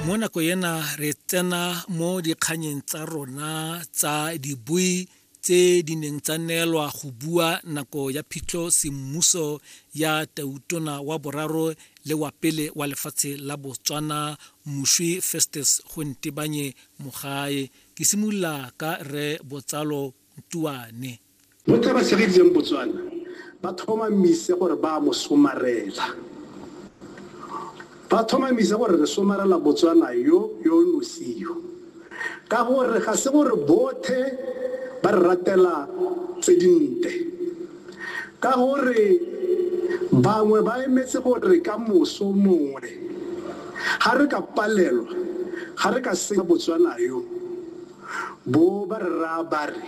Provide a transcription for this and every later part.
mo nako ena re tsena mo dikganyeng tsa rona tsa dibui tse di neng tsa neelwa go bua nako ya phitlho semmuso ya tautona wa boraro le wa pele wa lefatshe la botswana moswi festus go ntebanye mogae ke simolola ka re botsalo tuane Mo taba se re itseng Botswana ba tlhomamise gore ba mo somarela. Ba tlhomamise gore re somarela Botswana yo yo nosio. Ka gore ga se gore bothe ba re ratela tse dinte. Ka gore bangwe ba emetse gore ka moso mongwe ga re ka palelwa ga re ka senya Botswana yo. Bo ba re raya ba re,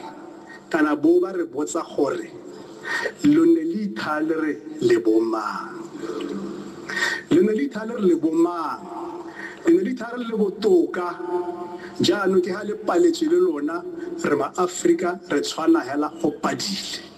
kana bo ba re botsa gore, Lo ne le ithaa le re le bomang? Lo ne le ithaa le re le bomang? Le ne le ithaa re le botoka, jaanong ke ha le paletswe le lona, re ma-Afrika, re tshwana hela go padile.